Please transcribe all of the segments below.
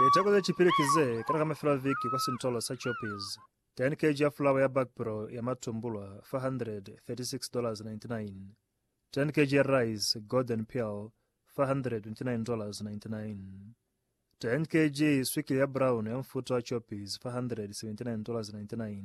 Liteko ze cipili ki ze kena ka mafelo a viki kwa sintolo sa Choppies. 10 kg ya fulawa ya bakpro ya matumbulwa, $436.99. 10 kg ya rice, golden pearl, $429.99. 10 kg swikili ya brown ya mufuta wa Choppies, $479.99.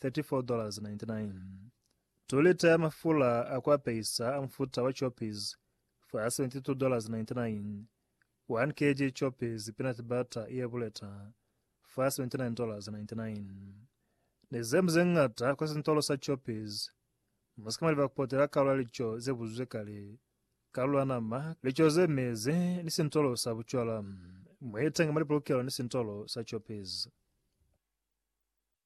34.99 2 lita ya mafula a ku apeisa a mufuta wa choppies fa $72.99 1 kg choppies peanut butter ye buleta fa $79.99 ni zemu ze ngata kwa sintolo sa choppies mu si ka maliba ku potela kalu ya lico ze buzuzwe kale kalu ya nama lico ze mezi ni sintolo sa bucwala mu itenga mwa lipolokelo ni sintolo sa choppies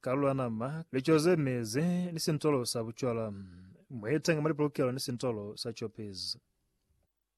Ka lula nama, lico ze mezi, ni sintolo sa bucwala. Mweetanga mwa lipolokelo ni sintolo sa copies.